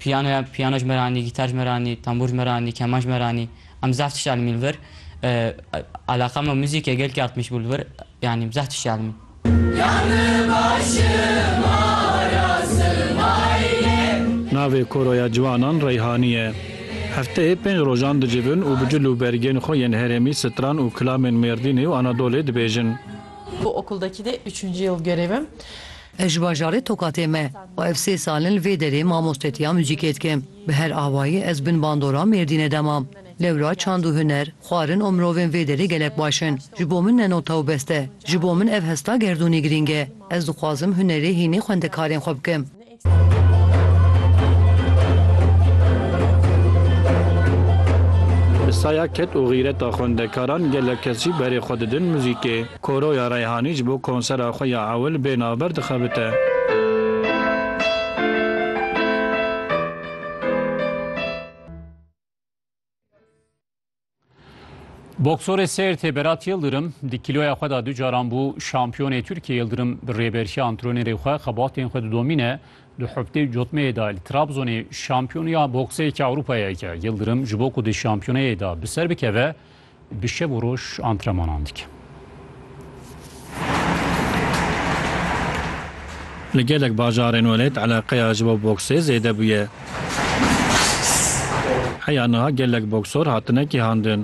Piyanoya piyano ji me re anî, gîtar ji me re anî, tembûr ji me re anî, keman ji me re anî. Em zaf tişt elmîn li vir. Eleqa me muzîkê gelkî artmîş bû li vir. Yanî em zaf tişt elmîn. Navê koroya ciwanan Reyhanî ye. Hefteyê pênc rojan dicivin û bi cil û bergên xwe yên herêmî stran û kilamên Mêrdînê û Anadolê dibêjin. Bu okuldaki de üçüncü yıl görevim. Ez ji bajarê Tokatê me û ev sê sal in li vê derê mamostetiya muzîkê dikim. Bi her awayî ez bin bandora Mêrdînê de mam. Lewra çand û huner, xwarin û mirovên vê derê gelek baş in. Ji bo min ne nota û best e. Ji bo min ev hesta gerdûnî girîng e. Ez dixwazim hunerê hînê xwendekarên xwe bikim. Bi saya ked û xîreta xwendekaran gelek kesî berê xwe didin muzîkê. Koroya Reyhanî ji bo konsera xwe ya ewil bê navber dixebite. Boksorê Sêrtê Berat Yildirim di kîloya xwe de du caran bû şampiyonê Tirkiyê Yildirim bi rêberşiya antrenêrê xwe xebatên xwe didomîne di heftê cotmeyê de li Trabzonê şampiyoniya boksê Ewropayeke Yildirim ji bo ku di şampiyoneyê de bi ser bikeve Bi şev û roj antrenmanan dikim. Li gelek bajarên welêt eleqeya ji bo boksê zêde bûye. Heya niha gelek boksor hatine kêhandin.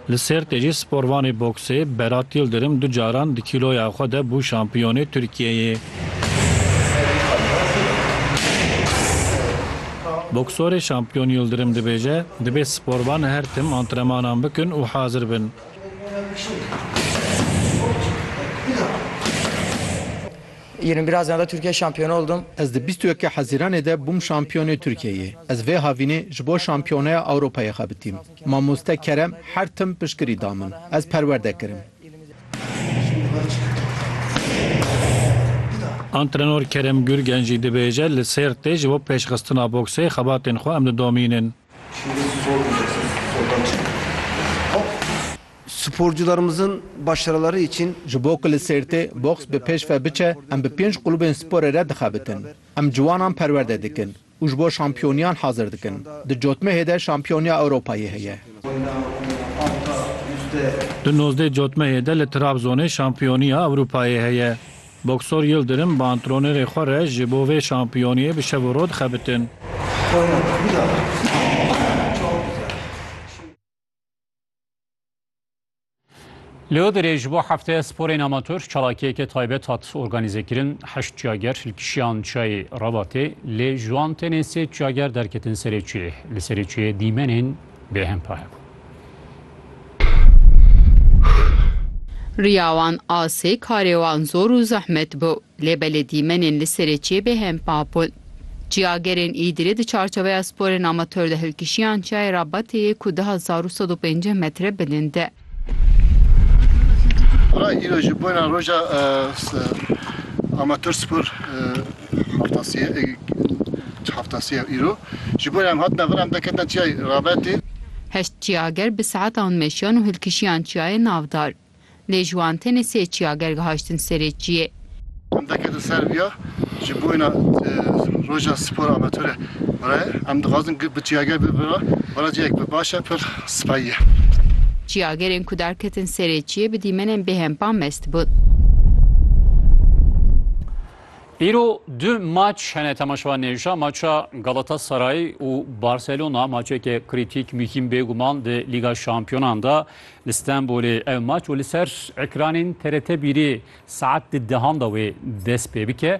Li Sêrtê jî sporvanê boksê Berat Yildirim du caran di kîloya xwe de bû şampiyonê Tirkiyeyê. Boksorê şampiyon Yildirim dibêje, Dibê sporvan her tim antrenmanan bikin û hazir bin. Ez di bîst û yekê Hezîranê de bûm şampiyonê Tirkiyeyê. Ez vê havînê ji bo şampiyoneya Ewropayê xebitîm. Mamoste Kerem her tim piştgirî da min. Ez perwerde kirim. Antrenor Kerem Gürgen jî dibêje, Li Sêrtê ji bo pêşxistina boksê xebatên xwe em didomînin. Sporcularımızın başarıları için. Ji bo ku li Sêrtê boks bi pêş ve biçe, em bi pênc qulubên sporê re dixebitin. Em ciwanan perwerde dikin. Û ji bo şampiyoniyan hazir dikin. Di cotmehê de şampiyoniya Ewropayê heye. Di nozdeh cotmehê de li Trabzonê şampiyoniya Ewropayê heye. Boksor Yildirim bi antronêrê xwe re ji bo vê şampiyoniyê bi şev û roj dixebitin. Leo derê ji bo hefteya sporên amatör çalakiyeke taybet hat organîzekirin heşt çiyager li kişiyan çayê Rebatê lê ji wan tenê sê çiyager derketin serê çiyê li serê çiyê dîmenên bêhempa hebû. Riya wan asê karê wan zor û zehmet bû lê belê dîmenên li serê çiyê bêhempa bûn. Çiyagerên Îdirê di çarçeweya sporên amatör de hilkişiyan çiyayê Rabateyê ku di hezar û sed û pênceh metre bilin de. Ra îro ji bona roja amatör spor heftasiye heftasiye îro ji bona em hatine vir em de ketina çiyayê Rabetê. Heşt çiyager bi saetan meşiyan û hilkişiyan çiyayê navdar. Lê ji wan tenê sê çiyager gihajtin serê çiyê. Em deketin ser viya ji boyna roja spor amatore re em dixwazin bi çiyager bibin re vera ciyek bi baş e pir sipayî ye. Çiyagerên ku derketin serê çiyê bi dîmenên bêhempa mest bûn. Îro du maç hene temaşevan nêşa maça Galatasaray û Barcelona maçeke krîtîk mîhîm bêguman di Lîga Şampiyonan de Li Stenbolê ev maç û li ser ekranên TRT bîrê saet di dehan de wê dest pê bike.